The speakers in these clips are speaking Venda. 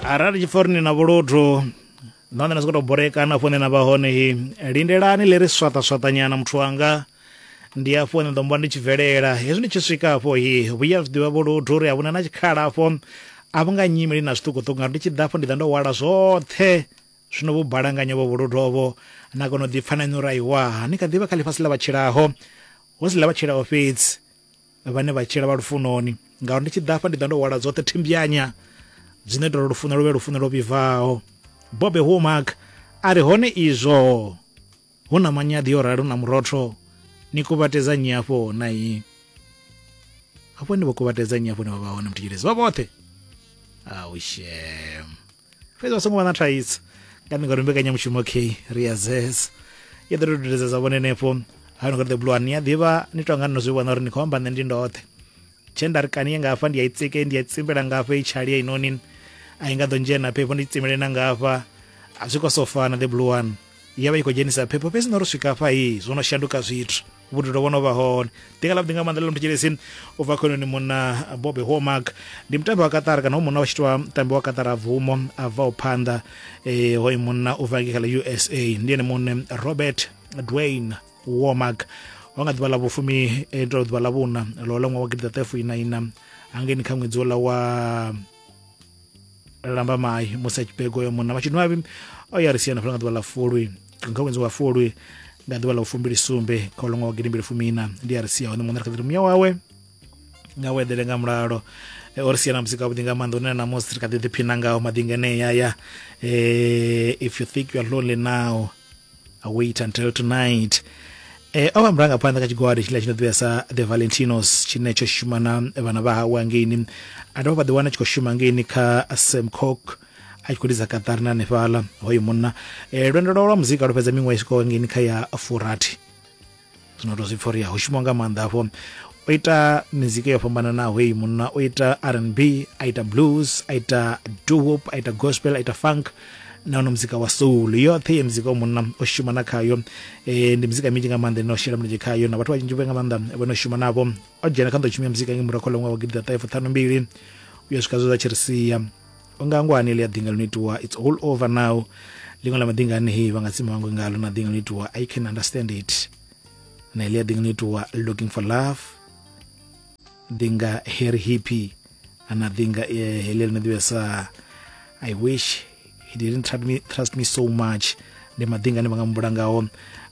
arali tshiforini na vhuluthu nahone na sokoto boreka na fone na vha hone hi lindelani ḽi ri swaṱaswaṱanyana muthu wanga ndi afho nṋe ḓombo ndi tshi bvelela hezwi ndi tshi swika afho hi vhuya zwi ḓivha vhuluthu uri a vhuna na tshikhala afho a vhu nga nyimeli na zwiṱukuṱuku ngauri ndi tshi ḓa afho ndi ḓa ndo hwala zwoṱhe zwino vho balanganya vho vhuluthu ovho na kona u ḓipfa na inwi uri aiwa ni kha ḓivha kha ḽifhasi ḽa vhatshilaho hu si ḽa vhatshilaho fhedzi vhane vha tshila vha lufunoni ngauri ndi tshi ḓa afha ndi ḓa ndo hwala dzoṱhe thimbyanya dzine ḓolo lufuno luvhe lufuno lwo vhibvaho bobe homark a ri hone izwo hu na manyaḓi yo rali hu na murotho ni kuvhatedza nyi afho na yi afho ni vho kuvhatedza nyi afho ni vha vha hone mutshilezi vha vhoṱhe aushem fhedzi vha songo vha na thaidzo nga ni ngori mbekanyamushumo k ri ya zesa i ḓo dudedza za vhone henefho ha no the blue ni a ḓivha ni tonga ni no zwi vhona uri ni khou amba nṋe ndi ndoṱhe tshe nda ri kani ye nga hafha ndi ya i tsike ndi ya tsimbela nga hafha i tshali ya inoni a i nga ḓo ndzhena phepho ndi tsimele na nga hafha a zwi khou sofana the blue one ya vha i khou dzhenisa phepho fhedzi no ri swika hafha hii zwo no shanduka zwithu vhudilo vho no vha hone ḓinga ḽa vhuḓi nga maanḓa ḽa muthetshelesin u bva khononi munna bobe homark ndi mutambi wa katara kana ho munna wa tshitiwa mutambi wa katara bvumo a bvaho phanḓa um hoyu munna u bva ngei kha ḽa usa ndi ene muṋe robert dwayne womark wa nga ḓuvha ḽa vhufumi eh, ndo ḓuvha ḽa vhuna ḽo ḽa ṅwaha wa gidiḓaṱahefuinaina hangeni kha ṅwedzi wola wa lamba mai musi a tshi bega uyo munna matshidwavhi o ya ri siana fhala nga ḓuvha ḽa fulwi kha ṅwedzi wa fulwi nga ḓuvha ḽa u fumbili sumbe kha u longa wa gidimbili fumiina ndi a ri sia hone muṋe ri kha ḓi ri muya wawe nga u eḓele nga mulalo e, o ri sia na musi kavhuḓi nga maanḓa une na musi ri kha ḓi ḓiphina ngaho maḓi ngeneyaya um if you think youare lonely now I wait until tonight e, o vha murangaphanḓa kha tshigwada tshiḽa tshi no ḓivhea sa the valentinos tshine tsho shuma na vhana vha hawe angeini a dovha vha ḓiwana tshi khou shuma angeini kha semcock a tshi khou lidza kaṱari na hanefhaḽa hoyo munna e, lwendo lwawe lwa muzika lwo fhedza miṅwaha i swikaho angeini kha ya furathi zwino to zwi pfa uri ho shuma nga maanḓa afho o ita mizika yo fhambananaho heyi munna o ita rnb a ita blues a ita dohop a ita gospel a ita funk na ono muzika wa soul yoṱhe ye muzika wa munna o shuma na khayo e, ndi muzika minzhi nga maanḓa ine o shela mulenzhe khayo na vhathu vha tshinzhi nga maanḓa vho no shuma navho o dzhena kha nḓo tshumia muzika nge murahu kha ḽa ṅwaha wa gidi ḓa ṱahe fuṱhanu mbili u ya swika zwe zwa tshi ri sia unga ngwani ḽi a ḓinga ḽo itiwa it's all over now ḽiṅwe ḽa maḓinga anei vha nga tsima vhangwe ngalo na ḓinga ḽo itiwa i can understand it na ḽi a ḓinga ḽo itiwa looking for love ḓinga harry hippy ana ḓinga eh, heḽi ḽi no ḓivhesa i wish he didn't trust me, trust me so much ndi maḓinga ane vha nga mumbula ngaho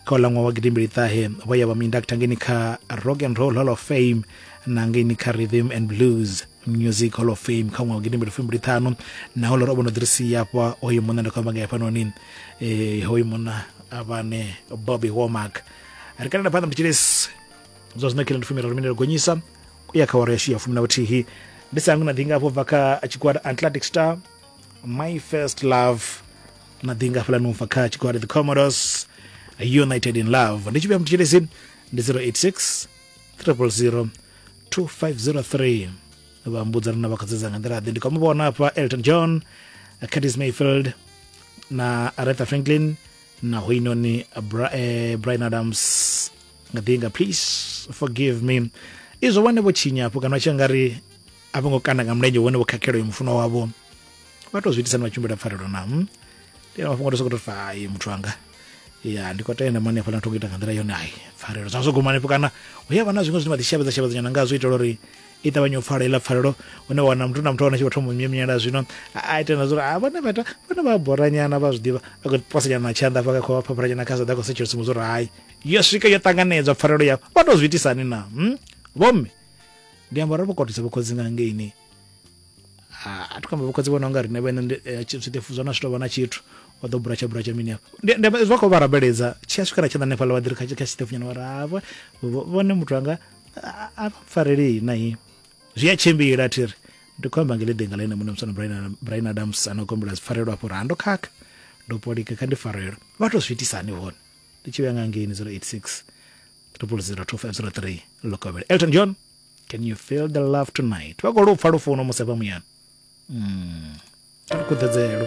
kha u laṅwa wa gidimbili ṱahe vho ya vha mu inducta ngeni kha rock and roll hall of fame na ngeni kha rhythm and blues music hall of fame kha ṅwaha wa gidimbili fumbili ṱhanu na holore o vho no ḓiri sia hafha hoyu munna ndi khou amba nga hafhanoni um eh, hoyu munna avhane bobby womark ri kalela phanḓa mutshilesi zwa zwino khilo ndi fumi raru minelo gonyisa u ya kha waro yashu ya fumi na vhuthihi ndi sangu na ḓinga hafho bva kha tshigwada atlantic star my first love na ḓinga hafhaḽani ubva kha tshigwada the commodores united in love ndi tshivhuya mutshilesi ndi 086 0002503 vha mbudza rina vha kha dzedza nga nḓila ḓe ndi kha muvhona hafha elton john curtis mayfield na aretha franklin na hoinoni eh, brian adams nga ḓinga please forgive me izwo vhane vho tshinya hafho kana vha tshi nga ri a vho ngo kanda nga mulenzhe vhone vho khakhelo yo mufuno wavho vha tou zwi itisa ni vha tshimbila pfarelo na ndi mafhungo to sokoto fa muthu wanga ya ndi khou tenda mani hafhaḽa thongo ita nga nḓila yone ai pfarelo zwa zwo guma hanefho kana hu ya vha na zwiṅwe zwine vha ḓi shavhedza shavhedza nyana ngazwo itela uri i ṱavhanye u pfala iḽa pfarelo une wana muthu na muthu wana tshi vha thoma myemyela zwino a ita na zwa uri a vhone vha ita vhone vha boranyana vha zwi ḓivha a khou posa nyana na tshanḓa hafha kha phaphara nyana kha saḓa khou setshela tsumbo zwa uri hai yo swika yo ṱanganedzwa pfarelo yavho vha tou zwi itisani na hmm? vhomme ndi amba uri vho kotisa vho khotsi nga ngeini a thi khou amba vhokhotsi vhona unga riṋe vhene eh, zwiṱefu zwa na zwi tovha na tshithu wa ḓo buratsha buratsha mini hafha zwa khou vha rabeledza tshi a swika na tshanḓa hanefhaḽa vha ḓiri kha tshiṱefu nyana vhara hafha vhone muthu anga a mpfarelei na i zwi a tshimbila a thi ri ndi khou amba ngele ḓinga ḽaine muṋe musana brian adams a no kombela zwipfarelo afho ra ndo khakha ndo polika kha ndi farelo vha tou zwi itisa hani hone ndi tshi vhuya nga ngeini 086 triple zero two five zero three lokovhela elton john can you feel the love tonight vha khou lupfa lufuno musi vha muyani mm. khuḓedzelo